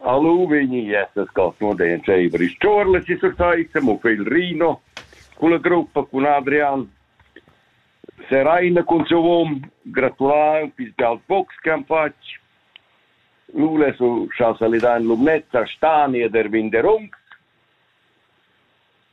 A lu vegni essas contundein seiver ils Ciorles e Sursaissa, mo Fegl Rino cun la gruppa cun Adrian Seraina cun siu um, gratulau pils Galt Box che han fatg. Lu lesu schau salidar in Lumnezza, Stani ed Erwin Derungs.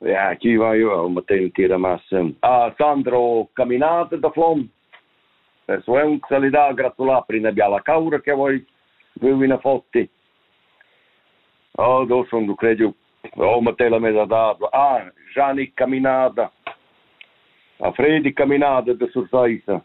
Ja, chi vaiva ün maternity da massa. Ah, Sandro, caminate da flom. E suent salidà, gratulà per üna biala caura che voi veuina fotti. Oh, do son du cregiu. Oh, Matella m'è da dato. Ah, Gianni Caminada. A Fredi Caminada de Sursaisa.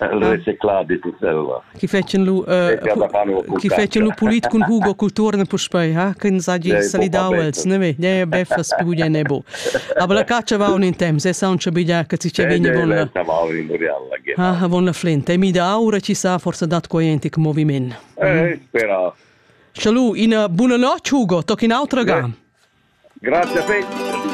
El reciclar dit Selva. Chi fetschen lu chi fetschen lu pulit cun Hugo Culturne puspei, ha, che ins hagi salidau els, ne ve, ne beffas più bien ne bo. Aber la caccia va un in temps, e sa un bidia che ci vegna von la Ah, von la flint. E mi da aura ci sa forse dat quojentic moviment. Eh, spera. Schalu, ina buona notg Hugo, tocchi un'altra ga. Grazie, Peter.